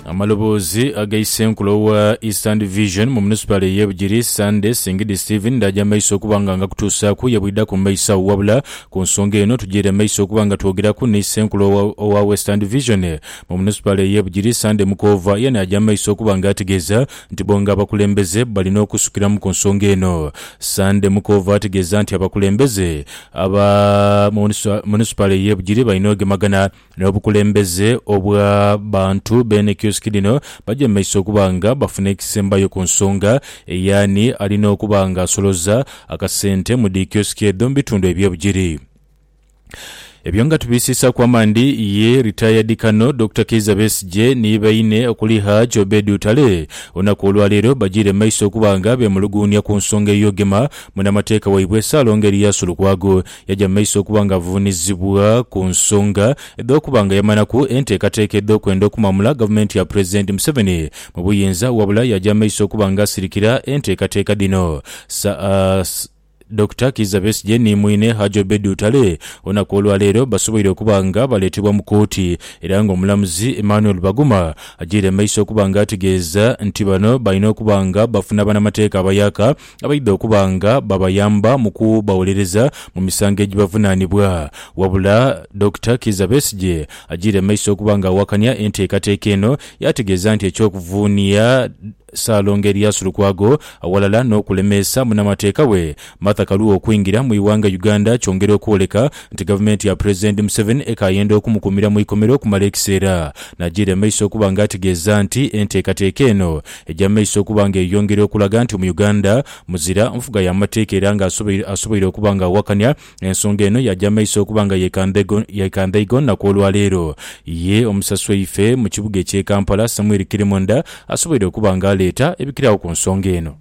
Amaloboozi aga Isenkula owa Eastern Division mu munisipaali ey'e Bugiri, Sunday Singidi Stephen ndaaja mu maiso okuba nga ngakutuusaaku ye bwidhaku mu maiso agho wabula ku nsonga eno tujiire mu maiso okuba nga twogeraku ni Isenkula owa owa Western Division mu munisipaali ey'e Bugiri, Sunday Mukoova ye naaja mu maiso okuba nga ategeeza nti bo nga abakulembeze balina okusukiramu ku nsonga eno. Sunday Mukoova ategeeza nti abakulembeze aba mu munisipaali ey'e Bugiri balina ogemagana N'obukulembeze obwa bantu beene kiosiki dhino bajemeisa okuba nga bafuna ekisembayo ku nsonga ey'ani alina okuba nga asoloza akasente mu dhi kiosiki edho mu bitundu eby'obugiri. Ebyo nga tubiisiisaaku amaandhi ye Retired Colonel Dokita Kiiza Besigye ni baine okuli Hajj Obed Utale olunaku olwa leero bajiire maiso okuba nga beemuluguunia ku nsonga ey'ogema munamateeka waibwe Ssaalongo Erias Lukwago Yaja mu maiso okuba nga avuunizibwa ku nsonga edh'okuba nga yamanaku enteekateeka edh'okwenda okumamula gavumenti ya Pulezidenti Museveni mu buyinza wabula yaja mu maiso okuba nga asirikira enteekateeka dhino. Sir. Dokita Kiiza Besigye ni mwine Haji Obed Lutale olunaku olwaleero basoboire okuba nga baleetebwa mu kooti era nga omulamuzi Emmanuel Baguma ajiire mu maiso okuba nga ategeeza nti bano balina okuba nga bafuna banamateeka abayaka abaidha okuba nga babayamba mu kubawolereza mu misango egibavunaanibwa. Wabula Dokita Kiiza Besigye ajiire mu maiso okuba nga awakanya enteekateeka eno yaategeeza nti eky'okuvuunia Ssaalongo Erias Lukwago awalala n'okulemeesa munnamateeka we Martha Karua okwingira mu ighanga Uganda kyongera okwoleka nti gavumenti ya Pulezidenti Museveni ekaayenda okumukuumira mu ikomera okumala ekiseera. Naajiira emaiso okuba nga ategeeza nti enteekateeka eno egya maiso okuba nga eyongera okulaga nti Omuyuganda muzira nfuga ya mateeka era nga asoboire okuba nga awakanya ensonga eno yaja maiso okuba nga yekandhaigo naku olwa leero. Ye omusasi waife mu kibuga ekye Kampala Samuel Kirimonda asoboire okuba nga aleeta ebikiragho ku nsonga eno.